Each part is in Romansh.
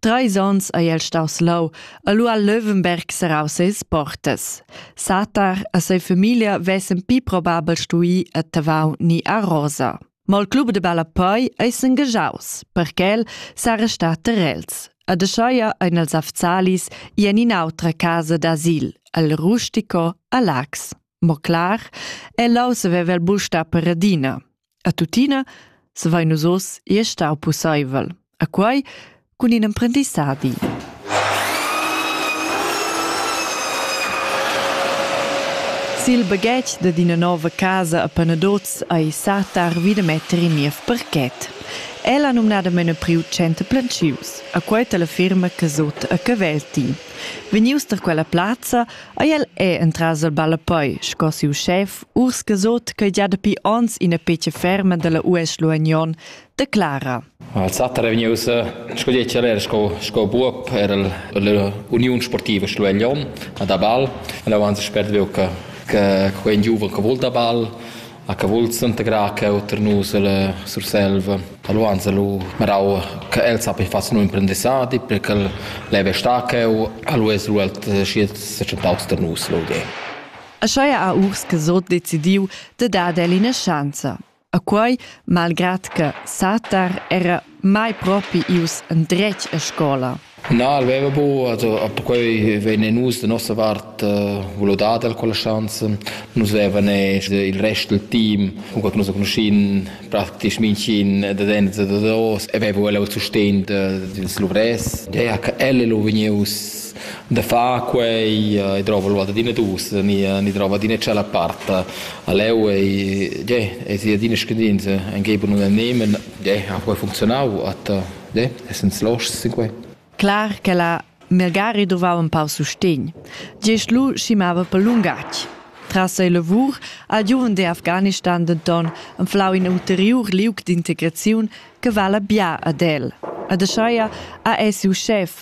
Treis onns ei el staus leu e lu ha Löwenberg serrau seis portas. Satar e sa famiglia vessen pli probabel stui a Tavau ni a Rosa. Ma il club de ballapei ei s'engagiaus, perché el s'ha restat ter els. Ad Aschaia ein els Afzalis i en in'autra casa d'asil, al Rustico a Lax. Mo clar, el leu saveva il busta per Radina. A tuttina savain nus oz ir star pussaivel, a quai cun in emprendissadi. Sil baghetg dad ina nova casa a Panadoz ei Satar vida metter in niev parket. El ha numnadamain priu center plantschius, a quei la firma Casot a Cavelti. Vegnius da quella plazza Ei el è entras il ballapoi sco siu schef urs gesot ch'ei gia dapi onns ina pecia ferma dalla US Luagnon declara. Alzata è vegnius sco decler sco sco buob era l'Uniun Sportiva Luagnon da ball. E avanza spert veu che che quei giuven che vul da ball ha cavult s'integrar cheu tar nus ella Surselva. Allo anzi lu marau che el sappi far siu imprendissadi per ch'el leva star cheu. Allo es lu el schi secentaus tar nus l'ol di. Aschia ha Urs Casot decidiu de dar el ina schanza. A quei, malgrad che Satar era mai propi ius endretg a scola, Na, el veva buca, also perquei vegnein nus da nossa vart vulau dar el quella schanza. Nus vevan il rest del team, cunquei che nus conoschin praktisch mintgin da denter da dos e veva el il sustegn dils luvrers. Dea che el è lu vegnius da far quei e drova lu adina dus, ni, ni drova adina tschella part leu e, ge, e sia adina scadinza, engei per nus nemen, ge, ha quei funzionau, at Ne, essend loschs sequei. Clar che la Melgari doveva empau sustegn. Gest lu schimava per lungatg. Tras ei lavur al giuven de Afghanistan denton enflau in ulteriur liug d'integraziun che vala bia ad el. Ed ascheia ha ei siu schef,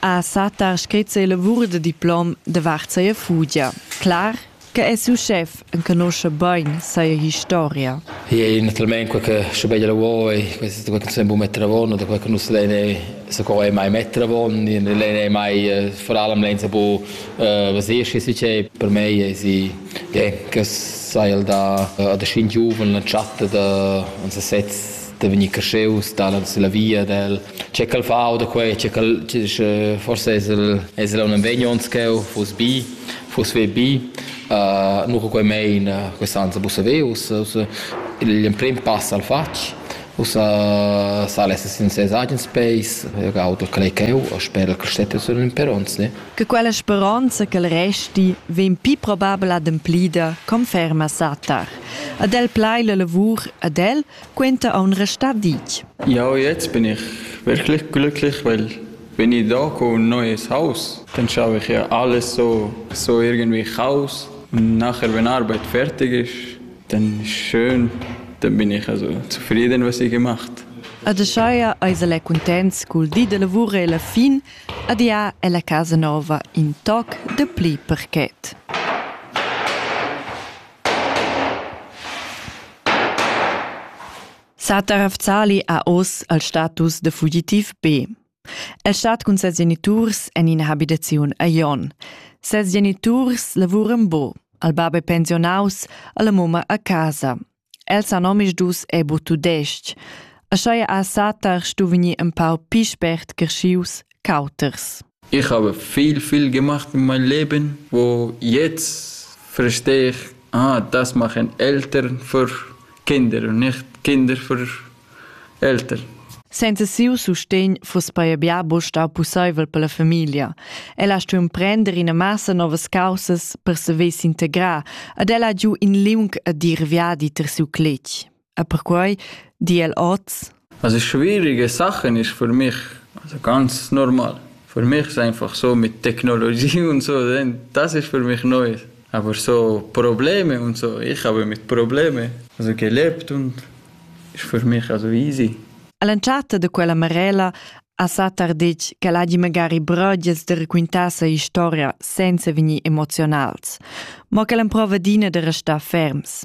ha satta scrit ses lavur da diplom davart sia fugia. Clar che è siu schef enconuscha bain sia historia. E naturalmente quel che sche bei la vuoi, questa quel che non bu mettere avon, da quel che non se deve se co è mai mettere avon, lei è mai foralem lenza bu vesir che si che per me è si che sai da da scint giuven la chatta da uns sets da venir cresceus, da la via del Che ch'el fa da quei, che ch'el forse es el es el aunc en vegnonts ch'eu fuss bi, fuss ve bi, nu che quei mein quest'an sa bussa ve, ussa ussa l'emprim pass al fatg, ussa sal esser sin ses agens peis, eu gaud quel ch'eu e sper ch'el stetta sün l'imperonza. Che quella speronza ch'el resti vegn pii probabel ademplida conferma satar. Ad el plai la lavur, ad el, quenta aun restar ditg. Jau jetzt bin ich wirklich glücklich, weil wenn ich da komme ein neues Haus, dann schaffe ich ja alles so, so irgendwie Chaos. Und nachher, wenn Arbeit fertig ist, dann ist schön, dann bin ich also zufrieden, was ich gemacht habe. Adeschaia eis el è cuntents cul di da lavur e la fin, adia è la casa nova in toc de pli perquet. Satar Afzali ha oz il status da fugitiv B. El stat cun ses geniturs en ina habitaziun a Jon. Ses geniturs lavuran bo, al bab è pensionaus, alla mumma a casa. El sa nomis dus e bu tudestg. Aschia ha Satar stu vegnir empau pi spert creschius ch'auters. Ich habe viel, viel gemacht in meinem Leben, wo jetzt verstehe ich, ah, das machen Eltern für Kinder und nicht Kinder für Eltern. Senza siu sustegn fuss paia bia bu stau pusseivel per la famiglia. Ella stuiu prender ina massa novas causas per se vess integrar, ad ella giu in liung a dir viadi ter siu cletg. E perquai di el oz. Also schwierige Sachen ist für mich, also ganz normal. Für mich ist einfach so mit Technologie und so, das ist für mich Neues. Aber so Probleme und so, ich habe mit Probleme also gelebt und ist für mich also easy. All'entschatta de quella marella ha Satar detg che l'hagi magari brodias de raquintar sa historia senza vegnir emozionals, mo che l'emprova dina de restar ferms.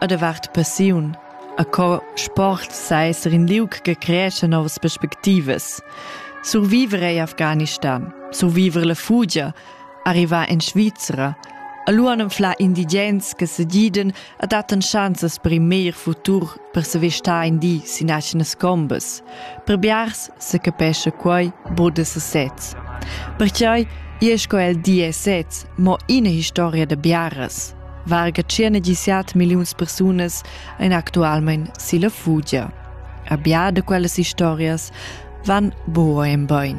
e davart passiun, e co sport seis er in liug che creescha novas perspectivas. Surviver ei Afghanistan, surviver la fugia, arrivar in Svizra, a lu han fla indigens che sediden e dattan chanzas per in meglier futur per se vestar in di sin aschenas combas. Per biars se capescha quei bod se sez. Perciai e sco el di e sez, mo ina historia da biaras. varga tschernegisiat milliuns persunas ein actualmein silla fugia. A bia da quellas historias van buca en bein.